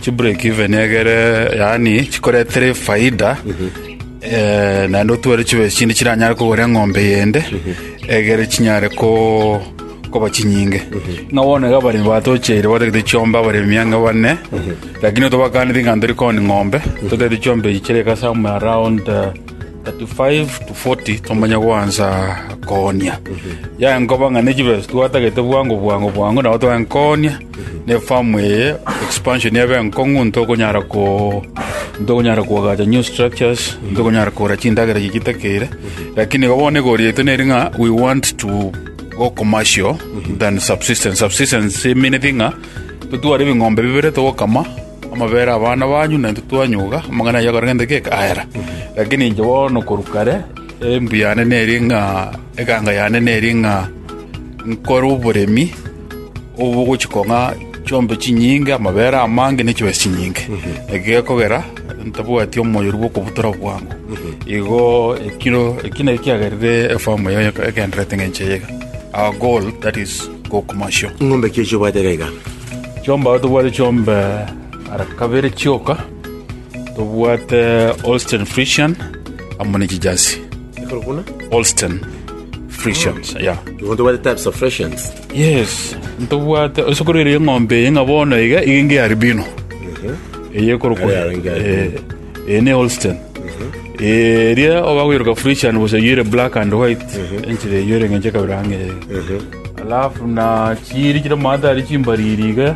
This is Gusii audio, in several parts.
Chibreak even egere yaani chikoretere faida eh, naende otware chibesa chinde chiranyare kogora eng'ombe yende egere chinyare ko koba chinyinge ng'a bono iga abaremi batocheire batagete chiombe abaremi ang'e bane lakini otobakaneti ng'a ntori koni ng'ombe totagete chiombe echi chire kasa mu around eh, 35 to 40 tomanya gwansa konia yaenkoba ng'a ne chibesa twatagete bwango bwango bwango nabo twaenkonia Nefamu eye expansion ebe nkong'u ntokonyara ko ntokonyara koagacha new structures ntokonyara kogora chindagera chigitakeire lakini igo bono egori yaito neri ng'a we want to go commercial than subsistence subsistence emineti ng'a totware ebing'ombe bibere togokama amabere abana banyu naintwe twanyuga amang'ana ayio akorenge nde geka ayera lakini inche bono korwa kare embu yane neri ng'a eganga yane neri ng'a nkore oboremi obogochika ng'a chiombe chinyinge, amabere amange, ne chibesa chinyinge. Eki gekogera ntabwati omoyoru bw'okobutora bwango. Igo ekiro eki naki kiagerire efamu eye egendererete ng'encho eye iga. Our goal that is go commercial. Ing'ombe ki echio obwate iga iga? Chiombe aye tobwate chiombe ara kabere chioka. Tobwate Holstein Friesian amo ne chijazi. Ekero buna? Holstein Friesian, yeah. Igo tobwate types of Frisians. Yes, ntobwate osokoro ere eng'ombe eye ng'a bono iga iga inge albino. Eye ekorokwa. Aya inge albino. Eh, eye ne Holstein. Eria oba goiroka Friesian gose yere black and white. Enchera eyo ere ng'enche kabere ang'e. Alafu na chiri chire moatari chimbariri iga.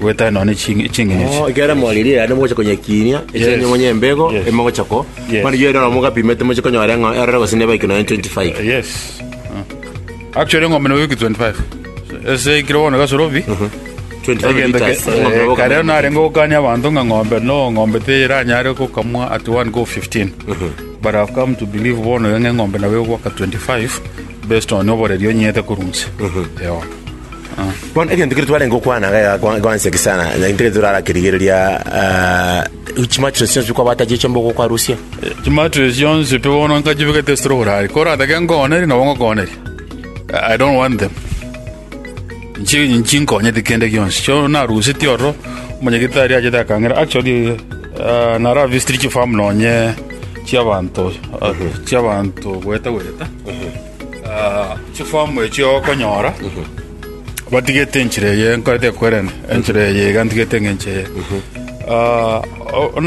Gwetana nonya chinge- chingencho echi. Oh, ekero moririe yaani mogocha konyekinia Yes. ekiagera monye embego Yes. emogocha ko Yes. mani yero na mogapimete moche konyora ng'a erore gose neba ikino 25 Yes. Ah. Actually ng'ombe nabo wiki 25. Ese ikiro bono gasorobi. 25 Egento ke- liters ng'ombe eh, nabo kare kamera. nare ngokania abanto ng'a ng'ombe no ng'ombe teranyare gokamwa at one go 15. But I've come to believe bono ng'a ng'ombe nabo egwaka 25 based on oboreri onyete kurunse. Ewa. Bono egento kere twarenge gokwana iga egakwa- egaansa eke sana, na intwe kere torara kerigereria ah, chimatres chionsi pi kwabata chiacha mbogo okwarusia. chimatres chionsi pi bono nkachibegete esiro borari koratake nkoonerie nabo ngokooneria i don't want them Nchi- nchinkonyeti kende gionsi so narusetie ororo omonyegete aria achete akang'ira actually ah, naravisitiri chifamu nonye chiabanto ah, chiabanto gweta gweta Ah, chifomu echi okonyora batigete enchera eye nkorete ekwerene enchera eye iga ntigete ng'enche eye Ah, o- ona